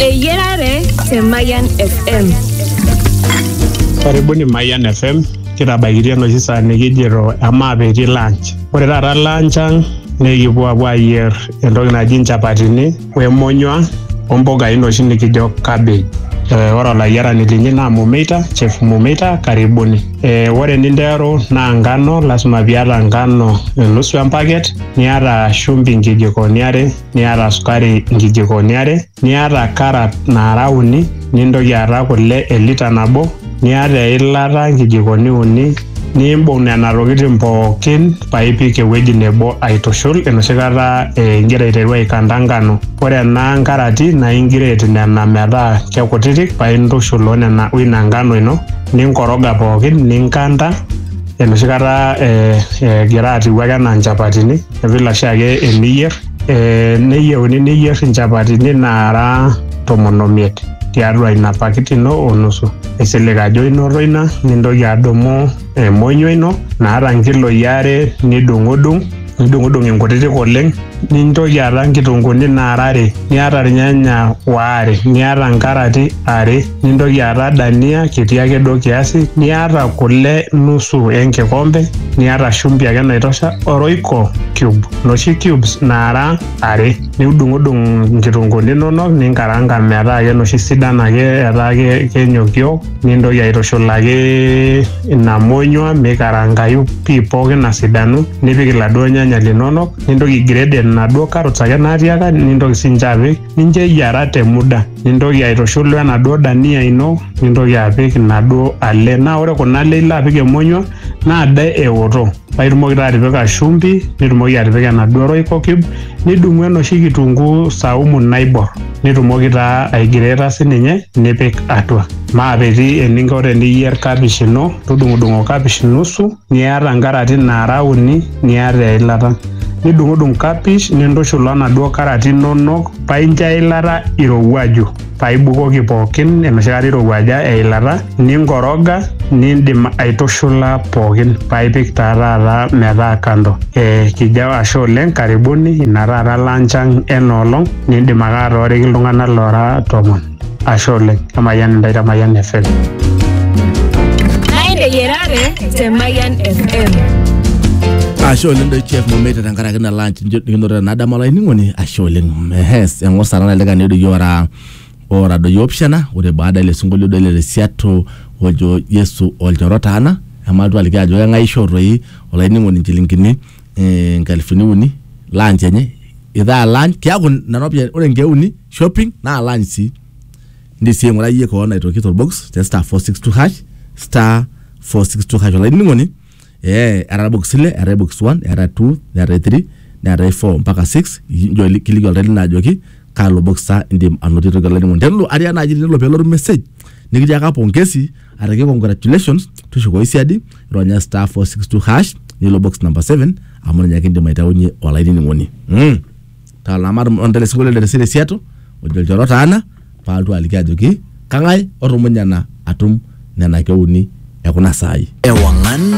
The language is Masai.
Eyiarare te Mayian FM. Karibuni Mayian FM. Kitabaikitia enoshi saa nikijito amaa petii lunch. Ore taata lunch ang naa ekipuo apuo ayier entoki naji nchapatini wemonyua ompukai noshi nikijo cabbage. Eh, ore olayiarani linyi naa Mumeita, Chef Mumeita, karibuni. Eh, ore ninteru naa ngano, lasima piata ngano nusu empaket, niata shumbi nkijikoni are, niata sukari nkijikoni are, niata karat naara uni, nintoki aata kule e lita nabo, niata eilata nkijikoni uni, nimbung nena tokitin pookin paipik ewueji nebo aitushul enoshi kata eh, ingira aiteru aikanta nkano. Ore ena nkarati naa ingiret nena metaa kekutitik paa intushul o nena o ina nkano ino ninkoroga pookin ninkanta enoshi kata eh, egira atiu ake enaa nchapatini. vile oshiake eniyier eh, neyieuni niyier inchapatini naara tomon omiet tiatua ina pakiti ino onusu isilig ajo inoto ina nintoki adumu emonyua ino naata nkiloi are nidung'udung nidung'udung inkutitik oleng nintoki aata nkitunguni naara are niata irnyanya waare niata nkarati are nintoki aata dania kiti ake duo kiasi niata kule nusu enkikombe niata shumbi ake naitosha oroiko cube noshi cubes naara are niudung'udung nkitunguni inonok ninkaranga metaa ake noshi sidan ake etaa ake kenyokiok nintoki aitushulaki ina monyua mikarangayu pii pookin asidanu nipik iladuo nyanya linonok nintoki grade inaduo carrots ake natiaka nintoki sinche apik nincho eyiara te muda nintoki aitushul wenaduo dania ino nintoki apik inaduo ale naa ore kuna ale ilo apik emonyua naa de eoto paa itumoki taa atipika shumbi nitumoki atipika enaduo royco cube nidung'u enoshi kitunguu saumu naiborr nitumoki taa aigreeta sininye nipik atua maakiti eninko teniyierr kapish ino tudung'udung'o kapish nusu. niata nkarati naara uni niata eilata. Nidung'udung kapish nintushul onaduo karati inonok paincho eilata irowuaju paibukoki pookin enoshi kata irowuaja eilata ninkoroga nindim aitushula pookin paipik taa taata metaa kando. E, kijao ashe oleng karibuni ina taata lunch ang enoolong nindim ake atooriki iltung'anak loora tomon. ashe oleng emayian intae te mayian fm Naende yerare te Mayan FM. ashe oleng doi chef momeita tenkaraki na lunch njo nikinoto tenadama olainining'oni ashe oleng ehes eng'or sana nalika ni doyio ora ora doyio opishana ore baada ile sinkolio doi le risiato ojo yesu olchoro taana emaltu aliki ajo keng'ae ishoo toi olainining'oni inchilingini eh, nkalifuni uni lunch enye itaa lunch kiaku nena ropiyiani ore nkeek uni shopping naalany sii ndi sii aing'urai iyie koon aitoki torbox te star 462 hash star 462 hash olainining'oni ee etaa box ile eetae box 1 eetae 2 neetae 3 neetae 4 mpaka 6 injo ili- kiliki oltau lino ajoki kalo box sa indim anotie toki olainining'oni tenelo aria naaji tenelo pelotu message nikitiaka pongesi araki congratulations tushukoyu siadi ronya star 462 hash nilo box number 7 amu ninye ake indim aitaunye olainining'oni mm. Talama ontele singolio le Resiato ojo lchoro taana paaltu aliki ajoki kang'ae otumunye ena atum nena keuni ekuna saai. Ewangan